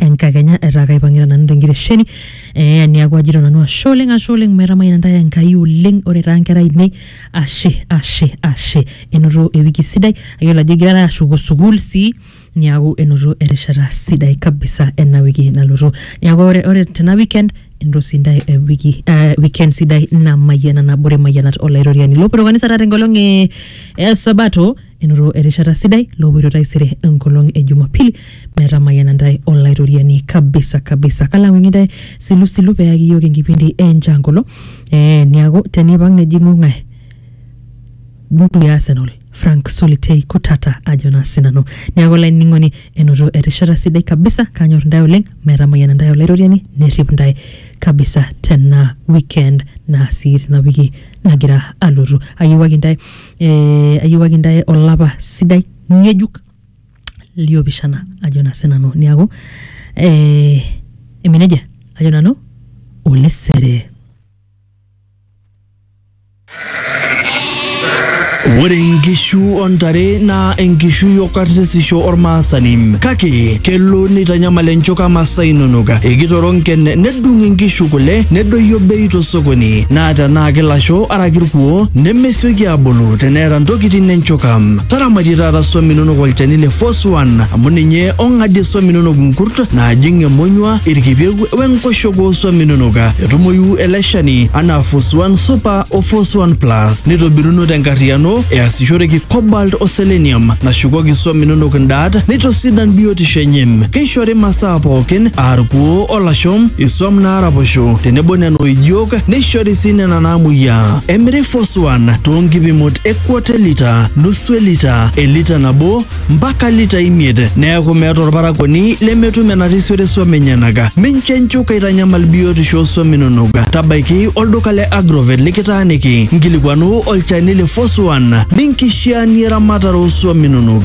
enkakenya etaa kaipang'ita nanu tenkitesheni eh, niaku ajito nanu ashe oleng ashe oleng maitamayiana ntae enkai oleng ore taa nkera ainei ashe ashe ashe enoto ewiki sidai ayiolo ajo igirara ashuko sukuul sii niaku enoto erishata sidai kabisa ena wiki nalotu niaku ore, ore tena weekend enoto sii ntae eh, wiki eh, weekend sidai namayiana nabore mayianat olaitoriani lopoito kanisa taata enkolong e e sabato enoto erishata sidai loopoito taisere enkolong e Jumapili metamayiana ntae Olaitoriani kabisa kabisa. Kalang'wing'i ntae silusilu peyaki iyiook enkipindi e Nchankolo eh, niaku tenipang nejing'u ng'ae buku ya Arsenal Frank Solitei Kutata ajo naa sinanu. Niaku olainining'oni enoto erishata sidai kabisa, kanyor ntae oleng metamayiana ntae Olaitoriani nerrip ntae kabisa tena weekend naa sii tina wiki nagira alotu. Ayiewuaki ntae eh, ayiewaki intae olapa sidai ng'ejuk liopishana ajo naa sinanu niaku eh, emenejia ajo nanu olesere Ore inkishu ontare naa enkishui okarsisisho ormaasani kake kelo neitanyamal enchoka masaa inonok ekitoronken nedung inkishu kule nedoyio bei tosokoni naa tenaa kilasho araki irkuo neme sioki abulu teneeta ntokitin enchuka. Taramatie taata swam inonok olchani le Force One amu ninye ong'adie swam inonok nkurt naajing emonyua, irkipieu we nkoshoke oo swam inonok. Etumoyu ele shani anaa Force One Super o Force One Plus neitobiruno tenkarriyiano easishoreki cobalt o selenium nashukoki swam inonok ndaat neitosidan biotisho enye. Keishori masaa pookin aa irkuoo olashom, isuam naaraposho tenebo nena oijok neishori sii nena naamuoyiaa. Emiri Foswan too nkipimot e kwota e lita, nusu e lita, elita nabo mpaka lita imiet neaku meeta olparakuoni lemetum enarisiore suam enyenak. Mincho enchuka aitanyamal biotisho oo suam inonok. Tabaiki olduka le Agrovet likitaaniki nkilikuanu olchani le Foswan ninkishiaanie eramatare oo suam inonok.